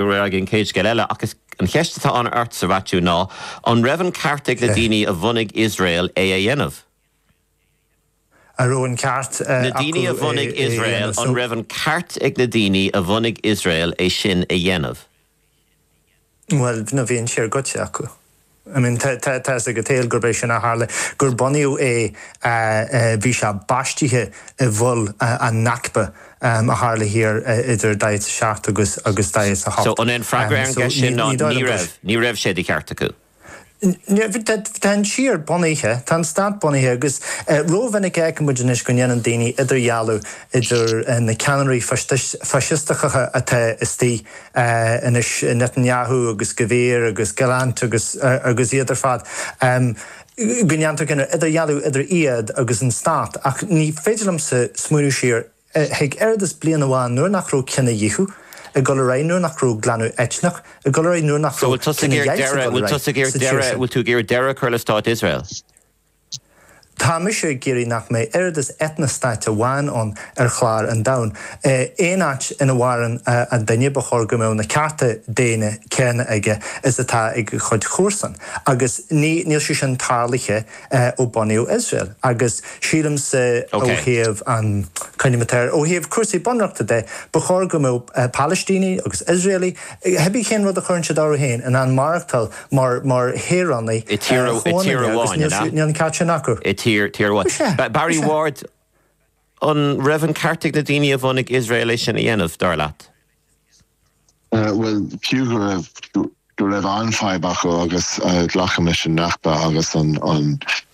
an chéad scéal eile, ach is an cheist atá ann ort sa Mhaitiú ná, an raibh an ceart ag na daoine a bhunaigh Iosrael é a dhéanamh? Na daoine a bhunaigh Iosrael, an raibh an ceart ag na daoine a bhunaigh Iosrael é sin a dhéanamh? Bhuel, nó bhí an siar goitse acu. I mean, tá a fhios ag an tsaol gurb é sin a tharla, gur bunaíodh é, bhí sé baistithe i bhfuil an Nakba a tharla thiar idir daichead a seacht agus daichead a hocht. So, an é an freagra ar an gceist sin ná, ní raibh, ní raibh sé de cheart acu? Tá an tír bunaithe, tá an stát bunaithe agus ró-mhinic a fheiceann muid anois go ndéanann daoine idirdhealú idir na ceannairí faisisteacha atá istigh, Anois Netanyahu agus Gvir agus Gallant agus iad ar fad, go ndéantar cineál idirdhealú idir iad agus an stát. Ach ní féidir liomsa smaoineamh siar chuig oiread is bliain amháin nuair nach raibh cinedhíothú ag dul ar aghaidh, nuair nach raibh glanadh eitneach ag dul ar aghaidh, nuair nach raibh cinedheighilt ag dul ar aghaidh sa tír sin. Bhfuil tú ag iarraidh deireadh a chur le stát Iosrael? Tá mise ag iarraidh nach mbeidh oiread is eitnea-stát amháin ann ar chlár an domhain. Aon áit ina mhaireann an duine ba chóir go mbeadh na cearta daonna céanna aige is atá ag a chuid comharsan. Agus níl sé sin tarlaithe ó bunaíodh Iosrael. Agus sílimse ó thaobh an, coinnímis air, ó thaobh cúrsaí bunreachta de, ba chóir go mbeadh Palaistínigh agus Iosraelaigh Cibé cén rud a chuireann siad orthu féin in ann maireachtáil mar shaoránaigh chomhionanna agus níl an ceart sin acu. I dtír, tír amháin. Is ea. Barry Ward, an raibh an ceart ag na daoine a bhunaigh Iosrael é sin a dhéanamh, dar leat? Bhuel, fiú go raibh go raibh an-fhadhb acu agus glacaim leis an Nakba agus an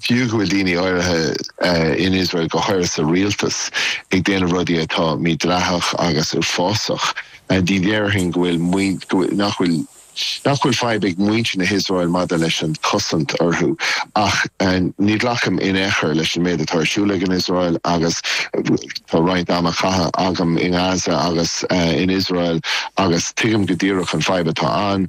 Fiú go bhfuil daoine áirithe in Iosrael, go háirithe sa rialtas, ag déanamh rudaí atá mídhleathach agus uafásach, ní dhéarfainn go bhfuil nach bhfuil nach bhfuil fadhb ag muintir na hIosrael maidir leis an chosaint orthu. Ach ní ghlacaim in aon chor leis an méid atá ar siúl ag an Iosrael agus tá roinnt ama caithe agam i nGaza agus in Iosrael agus tuigim go díreach an fadhb atá ann.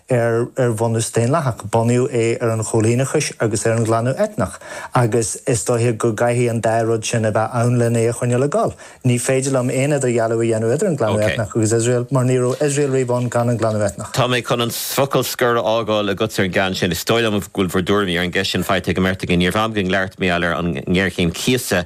ar bhunús daonlathach. Bunaíodh é ar an choilíneachas agus ar an ghlanadh eitneach agus is dóiche go gcaithfidh an dá rud sin a bheith ann lena a choinneáil ag gol. Ní féidir liom aon idirdhealú a dhéanamh idir an glanadh eitneach agus Iosrael mar ní raibh Iosrael riamh ann gan an glanadh eitneach. Tá mé chun an focal scoir a fhágáil agatsa ar an gceann sin. Is dóigh liom go bhfuil bhur dtuairimí ar an gceist sin faighte ag an mbeirt agaibh. Níorbh am againn labhairt Mícheál ar an ngéarchéim chíosa.